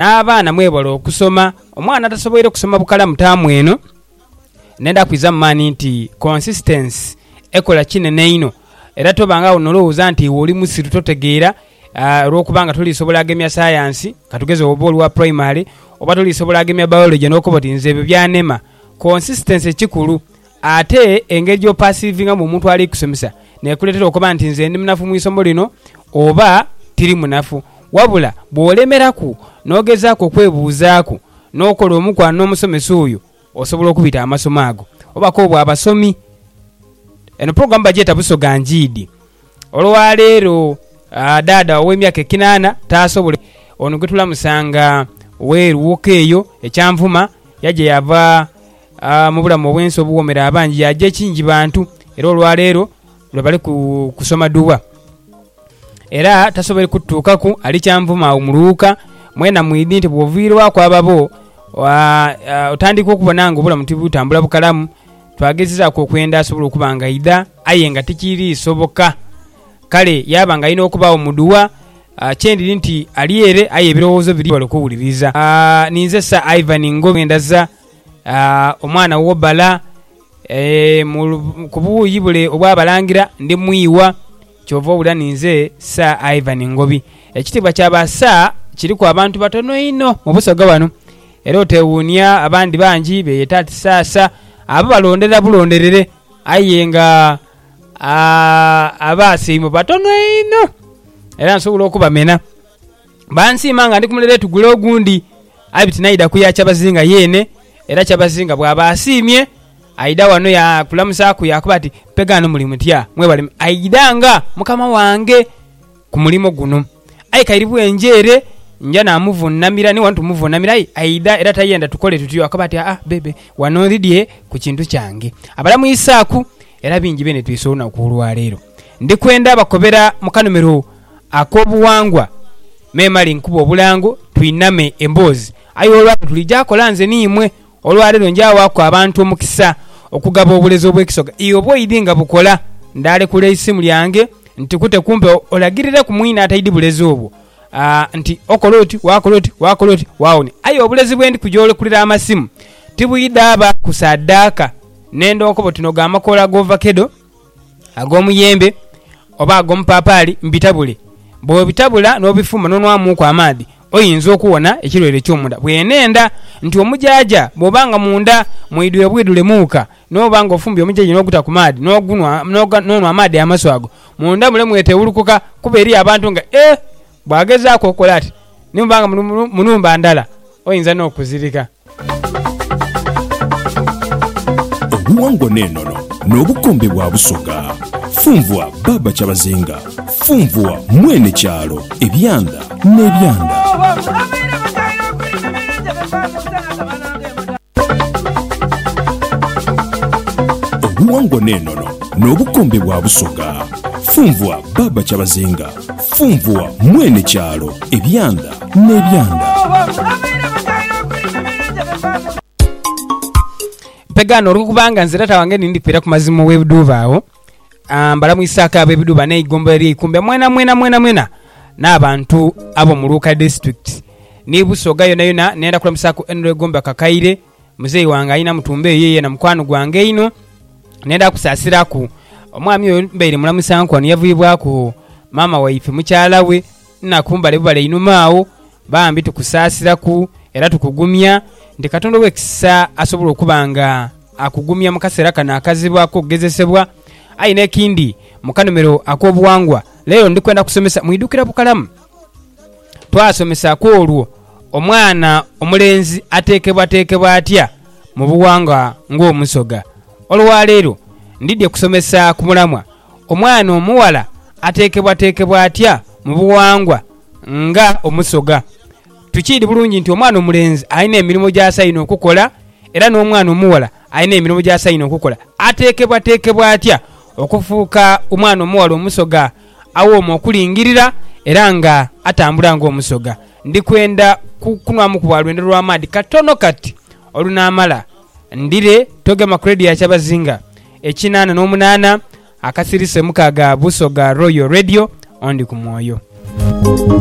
N'abaana mwebale okusoma. Omwana atasoboire kusoma bukalamu taamu eno, nenda kwiza mu maani nti consistency ekola kinene einho. Era tobangagho n'olowooza nti iwe oli musiru totegeera olwokuba nga toliisobola agemya sayansi, ka tugeze oba oli wa primary, oba toliisobola agemya biology n'okoba oti nze ebyo byanema. Consistency kikulu. Ate engeri gy'opasiivingamu omuntu ali kusomesa n'ekuleetera okoba nti nze ndi munafu mu isomo lino oba tiri munafu. Wabula bw'olemeraku n'ogezaaku okwebuuzaaku n'okola omukwano n'omusomesa oyo, osobola okubita amasomo ago. Oba k'obe wa basomi. Eno pulogulaamu bagyeta Busoga Njiidi. Olwaleero dhaadha ow'emyaka ekinaana taasobole. Ono gwe tulamusa nga w'e Luwoka eyo e Kyanvuma, yaja yaava. Mu bulamu obw'ensi obuwoomera abangi yaaja ekingi bantu era olwaleero lwe bali kusoma duwa. Era tasoboire kututuukaku ali kyanvuma agho mu lughuka. Mwena mwidhi nti bw'oviirwaku ababo otandika okubona nga obulamu tibutambula bukalamu. Twagezezaaku okwenda asobole okuba nga aidha aye nga tikiri soboka. Kale yaaba nga alina okubaagho mu duwa. Kye ndiri nti ali ere aye ebirowoozo biri ghale okuwuliriza. Ninze Sir Ivan Ngobi Ngendaza. omwana wo bala ku buuyi bule obwa balangira ndi mwiwa. Kyova owulira ni nze Sir Ivan Ngobi. Ekitiibwa kya ba Sir kiriku abantu batono inho mu Busoga wano era otewuunia abandi bangi beyeta ati Sir Sir abo balondera bulonderere aye nga aba Sir imwe batono inho era nsobola okubamena. Bansiima nga ndi ku mulere tugule ogundi, aye bitinaidha kuya kyabazinga yeene. Era kyabazinga bw'aba asiimye, aidha wano yaakulamuzaaku yaakoba ati, Mpe ghano muli mutya? Mwebale mutya? Aidha nga mukama wange ku mulimo guno. Aye kairi bwenja ere nja naamuvuunamira, ni wano tumuvuunamira. Aye aidha era tayenda tukole tutyo, akoba ati, Aa bebe, wano ndhidhie ku kintu kyange. Abala mu Isaaku era bingi benetwise olunaku olwaleero. Ndi kwenda bakobera mukanomero. Ak'obuwangwa, memale nkube obulango twiname emboozi. Aye olwaleero tuli gya kola nze ni imwe. Olwaleero nja waaku abantu omukisa okugaba obulezi obw'ekisoga. Ii Obwo idi nga bukola, ndaalekula eisimu lyange ntikute kumpe olagirireku mwine ataidi bulezi obwo nti okola oti, waakola oti, waakola oti, waawonia. Aye obulezi bwendi kuja olekulira amasimu tibwidhaabaaku saadaaka. Nenda onkoba oti nogo amakoola g'ovakedo. ag'omuyembe oba ag'omupaapaali mbitabule. Bw'obitabula n'obifumba n'onwamuuku amaadhi oyinza okuwona ekirwaire ekyo mu nda. Bwenhendha nti omujaaja bw'oba nga mu nda mwidhwire bwidhule muuka n'oba nga ofumbye omujaaja n'oguta ku maadhi n'ogunwa n'onwa amaadhi amasu ago, mu nda mule mwetewulukuka kuba eriyo abantu nga, Eeh! Bw'agezaaku okukola ati, ni bw'oba nga muli mu nhumba ndala, oyinza n'okuzirika. Obuwangwa n'enono n'obukombe bwa Busoga. Funvua Baaba Kyabazinga, Funvua Mwene Kyalo, Ebyanda n'Ebyanda. Obuwangwa n'enono n'obukombe bwa Busoga. Funvua Baaba Kyabazinga. Funvua mwene kyalo ebyanda n'ebyanda. Mpegaano olw'okubanga nze taata wange nindi kwira ku mazima ow'ebiduuba agho, ah, mbalamwisaako ab'ebiduuba n'eigombolola ery'Eikumbe mwena mwena mwena mwena n'abantu ab'omu Luuka District ni Busoga yonayona. Nenda kulamusaaku Henry Gomba Kakaire. Muzeeyi wange alina mutumba eyo yena mukwano gwange einho nenda kusaasiraku. Omwami oyo mbaire mulamusanku ghano yavuyibwaku maama waife mukyala we Naku mbale bubale einhuma agho. Bambi tukusaasiraku era tukugumya nti Katonda ow'ekisa asobola okuba nga akugumya mu kaseera kano akazibu ak'okugezesebwa. Aye n'ekindi, mu kanomero ak'obughangwa leero ndi kwenda kusomesa mwidukira bukalamu. Twasomesa ku olwo omwana omulenzi ateekebwateekebwa atya mu bughangwa ng'omusoga. Olwaleero ndidhie kusomesa ku mulamwa omwana omughala ateekebwateekebwa atya mu bughangwa nga omusoga. Tukiidhi bulungi nti omwana omulenzi alina emirimo gy'asainhe okukola era n'omwana omughala alina emirimo gy'asainhe okukola. Ateekebwateekebwa atya okufuuka omwana omughala omusoga? Awooma okulingirira era nga atambula ng'omusoga. Ndi kwenda kukunwamuku bwa lwendo lwa maadhi katono kati. Olunaamala ndhire togema ku leediyo ya kyabazinga ekinaana n'omunaana akasirise mukaaga Busoga Royal Radio, ondi ku mwoyo.